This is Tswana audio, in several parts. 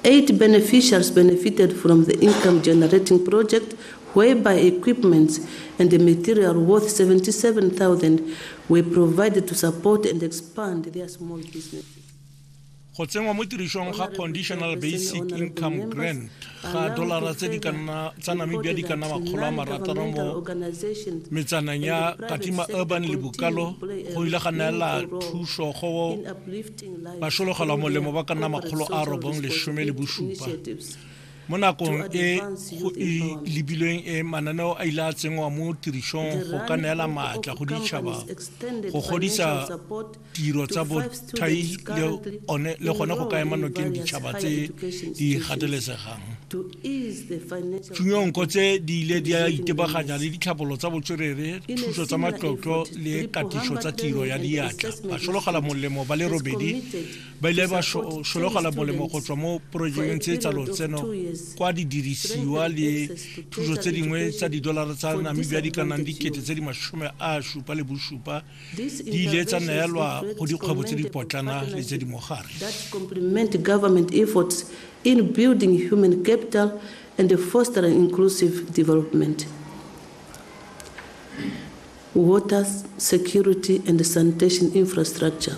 Eight beneficiaries benefited from the income generating project whereby equipments and the material worth 77,000 were provided to support and expand their small business. go tsenngwa mo tirisong ga conditional basic income grant ga dolara tse di kanna tsa namibia di kanna makgolo a marataro mo metsaneng ya katima urban le bokalo go ile ga neela thuso go Bašologelwa molemo ba ka nna makgolo a robong lesome le bosupa. Mo nakong e go e lebilweng e mananeo a ile a tsenngwa mo tirisong go ka neela maatla go ditšhaba go godisa tiro tsa bothai le gone go ka ema nokeng ditšhaba tse di gatelesegang. Tsunyonko tse di ile di a itebaganya le ditlhabolo tsa botswerere, thuso tsa matlotlo le katiso tsa tiro ya diatla. Basologala molemo ba le robedi ba ile ba sologala molemo go tswa mo porojekeng tse tsa lotseno kwa didirisiwa le thuso tse dingwe tsa didolara tsa Namibia di ka nnang dikete tse di masome a supa le bosupa di ile tsa neelwa go dikgwebo tse di potlana le tse di mogare in building human capital and fostering inclusive development water security and sanitation infrastructure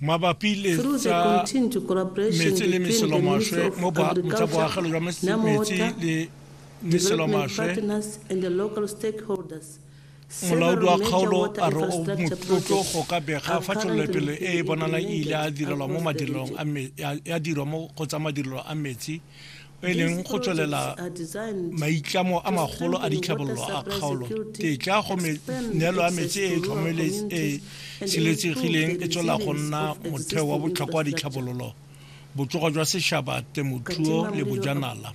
mabapi le tsa metsi le meselomaswe mo tsa boagelo jwa metsi le meselomaswe molaodi wa kgaolo a re o motlotlo go ka bega fa tšwelelopele e e bonalang e ile ya direlwa mo madirelong a metsi o e leng go tswelela maitlamo a magolo a ditlhabololo a kgaolo tetla go neelo ya metsi e e e siletsegileng e tswelela go nna motheo wa botlhokwa wa ditlhabololo botsogo jwa setšhaba temothuo le bojanala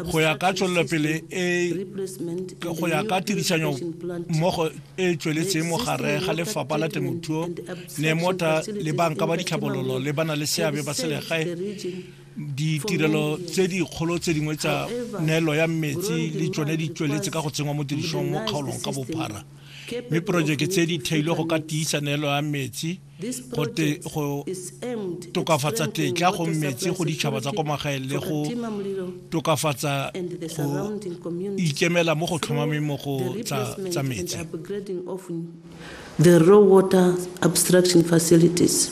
go ya ka tswelelopele e go ya ka tirisanyo mmogo e tsweletseng mo gare ga lefapha la temothuo ne mota le banka ba ditlhabololo le bana le seabe ba selegae ditirelo tse dikgolo tse dingwe tsa neelo ya metsi le tsone di tsweletse ka go tsenngwa mo tirisong mo kgaolong ka bophara mme porojeke tse di theilwe go ka tiisa neelo ya metsi go tokafatsa tetla go metsi go ditšhaba tsa kwa magaeng le go tokafatsa go ikemela mo go tlhomameng mo go tsa metsi the raw water abstraction facilities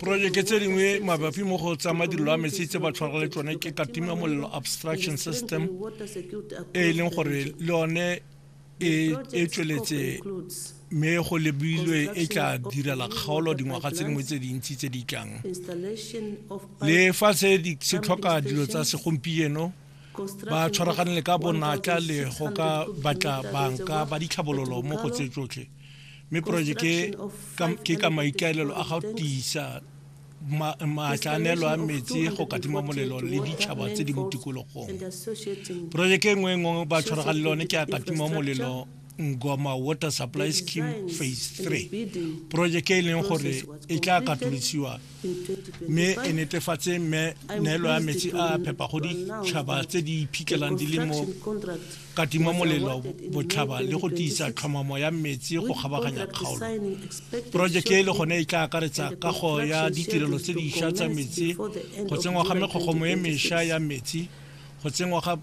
porojeke tse dingwe mabapi mo go tsa madirelo a metsi tse ba tshwara le tsone ke katima molelo abstraction system e e leng gore le yone e, e tsweletse mme go lebilwe e tla direla kgaolo dingwaga tse dingwe tse dintsi tse di tlang le fa se se tlhoka dilo tsa segompieno ba tshwaraganele ka bonatla le go ka batla banka ba ditlhabololo mo go tse tsotlhe mme projeke ke ka maikaelelo a ga tiisa maatlaanelo a metsi go katima molelo le ditšhaba tse di mo tikologong projeke nngwe e ngwe ba tshwarega le lone ke a katima molelo ngoma water supply scheme phase 3 projeke e leng gore e tla katolosiwa mme e netefatse mme neelo ya metsi a phepa go ditšhaba tse di iphitlhelang di le mo katima molelo botlhaba le go tiisa tlhomamo ya metsi go kgabaganya kgaolo porojeke e le gone e tla akaretsa kago ya ditirelo tse dišwa tsa metsi go tsengwa ga mekgogongwe e mešwa ya metsi go tsengwa ga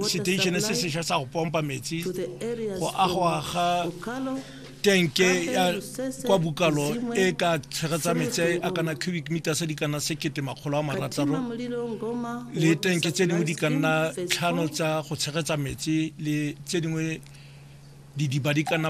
seteishene se sešwa sa go pompa metsi go agwa ga tenke ya kwa bukalo e ka tshegetsa metsi a kana cubic meter se di kana sekete makgolo a marataro le tenke tse dingwe di ka nna tlhano tsa go tshegetsa metsi le tse dingwe didiba di ka nna